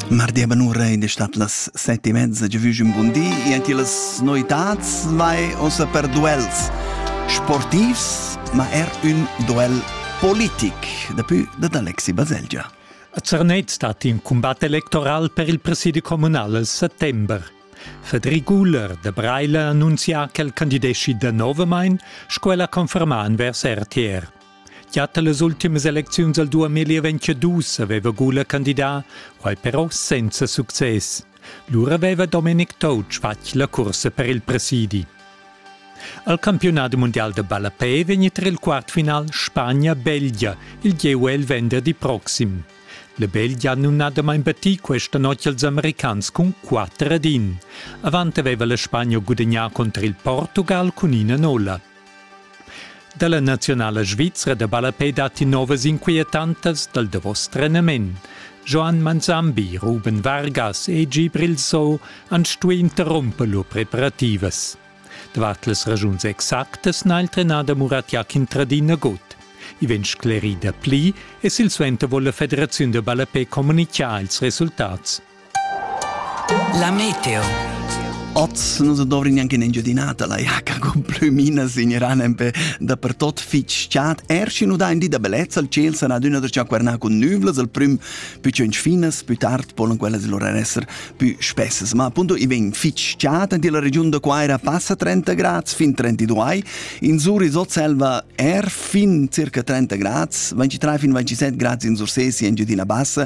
Mardi a Banura ed è stat las sette e mezza già un buon di e anche las noitads mai ossa per duels sportivs ma er un duel politic daplü dad Alexi Baselgia. A Zernez stat in combat electoral per il presidi comunal al settember. Federic Guller de Breile annunzia ch'el candidesci da novamain, sco el ha confermà envers RTR. Gia tar las ultimas elecziuns al 2022 aveva Gula candidà, quai però senza success. Lura aveva Dominic Toutsch fatg la cursa per il presidi. Al campionat mundial da ballapè vegn tra il quartfinal Spagna-Belgia il GUL venderdi proxim. La Belgia ha numnadamain battì questa notg als americans cun 4 ad 1. Avant aveva la Spagna gudagnà contro il Portugal cun ina nolla. Dalla naziunala svizra da ballapei datti novas inquietantas dal davos trenament. Joan Manzambi, Ruben Vargas e Gibril So han stuì interrumper lur preparativas. Davart las ragiuns exactas n'ha il trenader Murat Jakin tradì nagut. I vegn sclerì da pli e silsuenter vuol la federaziun da ballapei communicar ils resultats. La meteo. Oz nu se dovri neanche un'engiadinata la jacca con plumina signeran empè dapertot fich chat. Er schi nu dà in di da bellezza, il ciel sarà adüna da ciaquernà cun nüvlas, al prüm più tschench finas, più tard polan quellas lura esser più spessas. Ma appunto i vegn fich chat in la regiun da Quaira passa 30 grads fin 32. In Zuris ot selva er fin circa 30 grads, 23 fin 27 grads in Sursesi, Engiadina Bassa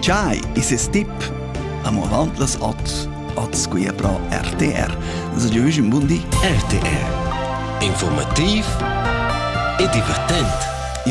Chai, is es tip. Amo avant las ot, ot squia pro RTR. Also giovüsch un bun di. RTR. Informativ e divertent.